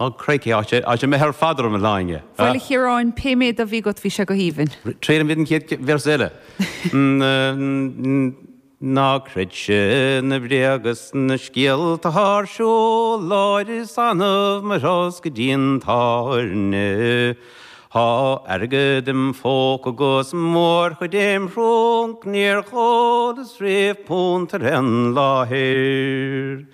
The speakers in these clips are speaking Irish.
Ó, crikey, á, sé an méid ar fad orm, a Shláine. Bhuel, a Chiaráin, pé méid a bhí agat, bhí sé go haoibhinn. Triailfidh mé an chéad véarsa eile. Ná creidse na bréaga is na scéalta tá ar siúl orm is annamh mo thosca go dtí an tábhairne. Thá airgead im phóca 'gus mórchuid im thrunc níor ólas riamh punt ar aon láthair.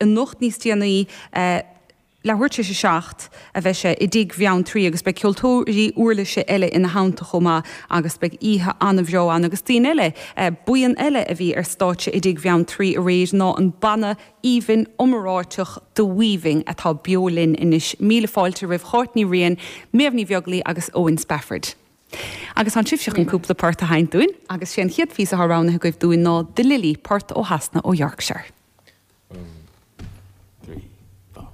anocht níos déanaí leathuair tar éis 7 a bheidh sé i dTigh Bheanntraí agus beidh ceoltóirí uirlise eile ina theannta chomh maith agus beidh oíche an-bheo ann agus daoine eile Buíon eile a bhí ar stáitse i dTigh Bheanntraí aréir ná an banna aoibhinn iomráiteach The Weaving atá beo linn anois. Míle fáilte roimh Cháit Ní Riain, Méabh Ní Bheaglaoich agus Owen Spafford. Agus tánn sibhse chun cúpla port a sheinnt dúinn, agus 'sé an chéad phíosa atá roghnaithe agaibh dúinn ná 'The Lily', port ó Shasana, ó Yorkshire. One, two, three, four.